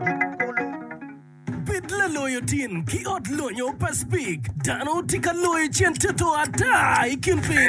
Bed laloyo tin ki ot lonyo pa Speke. Dano tye ka loyo cen toto ata i kin piny.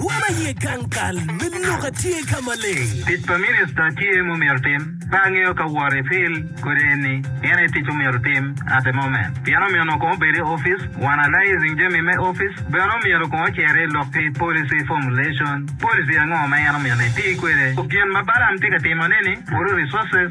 Wa ma iye gang kal me lok a tye ka maleng. Tic pa minista tye ma omyero otim. Ka angeyo ka woti Phil kodi en ni en aye tic omyero otim at the moment pien omyeno kong obed i office one alizing jami me office bene omyero kong ocer i lok ki policy formulation policy ango ma en omyeno eti kwede gin ma Balaam tye ka timo ne ni puro resources